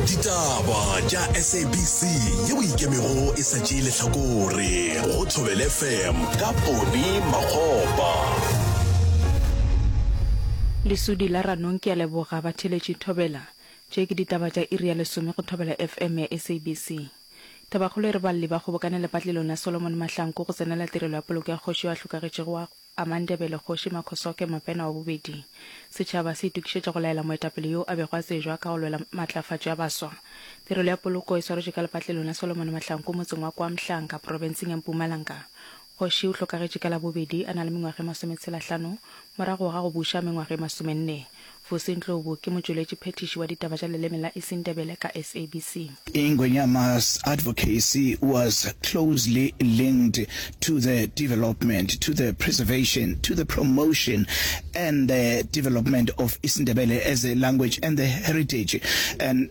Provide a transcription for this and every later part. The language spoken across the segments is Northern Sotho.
ditaba tša sabc ye o ikemego e sa tšee lehlakore go thobele fm ka pone magopa lesudi la ranong ke a leboga batheletši thobela tše ke ditaba tša iri ya lesome go thobela fm ya sabc tabakgolo e re balli ba kgobokane lepatlelong la solomon mahlanko go tsenela tirelo ya poloko ya kgoši yo a hlokagetšego wa a Mandebele Kgoši Makhosoke Mopena wa bobedi. Setšhaba se itokišetša go laela moetapele yo a bego a tsejwa ka go lwela matlafatšo ya baswa. Tirelo ya poloko e swaretšwe ka lepatlelong la Solomon Mahlanku motseng wa KwaMhlanka profenseng ya Mpumalanga. Kgoši o hlokagetše ka Labobedi a na le mengwaga e masometshelahlano morago ga go buša mengwaga e masomenne. Fose Ndlovu ke motšweletši phethiši wa ditaba tša leleme la Isindebele ka SABC. Ingwenyama's advocacy was closely linked to the development, to the preservation, to the promotion and the development of Isindebele as a language and the heritage and.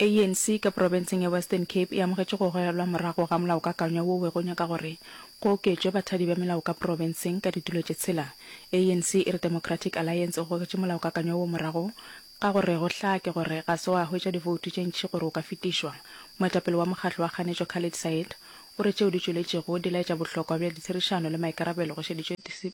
ANC ka profenseng ya Western Cape e amogetše go gogelwa morago ga molaokakanywa wo wego nyaka gore go oketšwe bathadi ba melao ka profenseng ka ditulo tše tshela. ANC e re Democratic Alliance o gogetše molaokakanywa wo morago ka gore go hlake gore ga se wa hwetša divoutu tše ntši gore o ka fetišwa. Moetapele wa mokgatlo wa kganetšo Khalid Said o re tšeo di tšweletšego di laetša bohlokwa bja ditherišano le maikarabelo go šeditšwe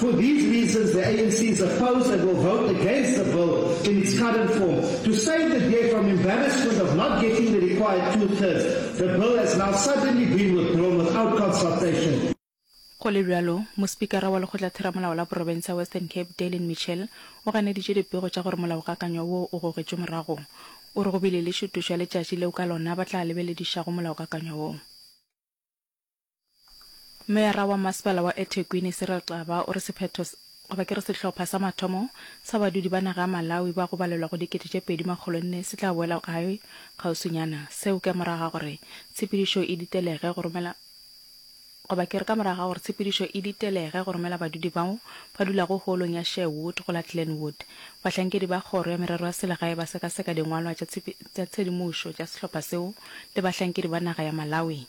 For these reasons the ANC is opposed and will vote against the bill in its current form. To save the DA from embarrassment of not getting the required two-thirds, the bill has now suddenly been withdrawn without consultation. Go le bjalo, Mospikara wa Lekgotlatheramolao la Porofense ya Western Cape, Daylin Mitchell, o ganeditše dipego tša gore molaokakanywa woo o gogetšwe morago. O re go bile le šutušo ya letšatši leo ka lona ba tla lebeledišago molaokakanywa woo. Meyara wa Masepala wa eThekwini, Cyril Xaba, o re sephetho goba ke re sehlopha sa mathomo sa badudi ba naga ya Malawi ba go balelwa go dikete tše pedi makgolo nne se tla boela gae kgauswinyana, seo ka morago ga gore tshepedišo e ditelege go romela goba ke re ka morago ga gore tshepedišo e ditelege go romela badudi bao ba dulago hoolong ya Sherwood go la Glenwood. Bahlankedi ba Kgoro ya Merero ya Selegae ba sekaseka dingwalwa tša tshedimošo tša sehlopha seo le bahlankedi ba naga ya Malawi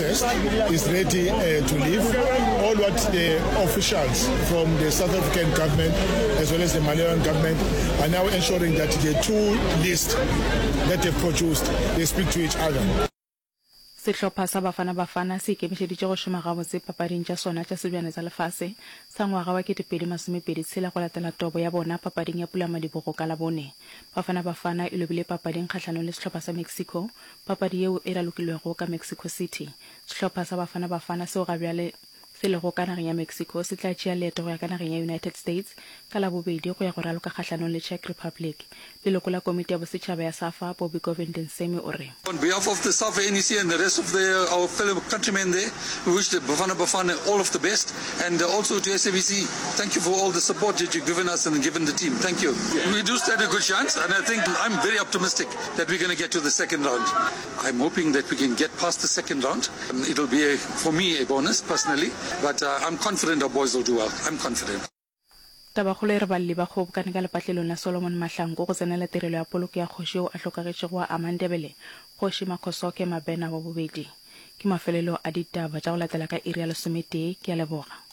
is ready uh, to leave. All what the officials from the South African government as well as the Malawian government are now ensuring that the two lists that they've produced, they speak to each other. Sehlopha sa Bafana Bafana se ikemišeditše go šoma gabotse papading tša sona tša Sebjana tsa Lefase sa ngwaga wa 2026 go latela tobo ya bona papading ya Pulamadibogo ka Labone. Bafana Bafana e lobile papading kgahlanong le sehlopha sa Mexico Papadi yeo e ralokilwego ka Mexico City. Sehlopha sa Bafana Bafana seo ga bjale se lego ka nageng ya Mexico se tla tšea leeto go ya ka nageng ya United States ka Labobedi go ya go raloka kgahlanong le Czech Republic. Leloko la komiti ya bosetšhaba ya Safa, Bobby Govind Nsemi o re. On behalf of the Safa NEC and the rest of the our fellow countrymen there, we wish the Bafana Bafana all of the best and also to SABC, thank you for all the support that you've given us and given the team. Thank you. We do stand a good chance and I think I'm very optimistic. That we're gonna get to the second round. I'm hoping that we can get past the second round. It'll be a, for me a bonus personally, but uh, I'm confident our boys will do well. I'm confident. Tabakgolo e re balli ba kgobokane ka lepatlelong la Solomon Mahlangu go tsenela tirelo ya poloko ya kgoši yo a hlokagetšego wa amang Ndebele, Kgoši Makhosoke Mabena wa bobedi. Ke mafelelo a ditaba tša go latela ka iri ya lesometee. Ke a leboga.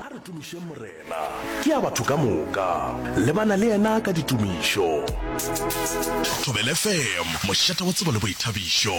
A re tumišeng Morena. Ke a batho ka moka. Lebana le yena ka ditumišo. Thobelfm, mošate wa tsebo le boithabišo.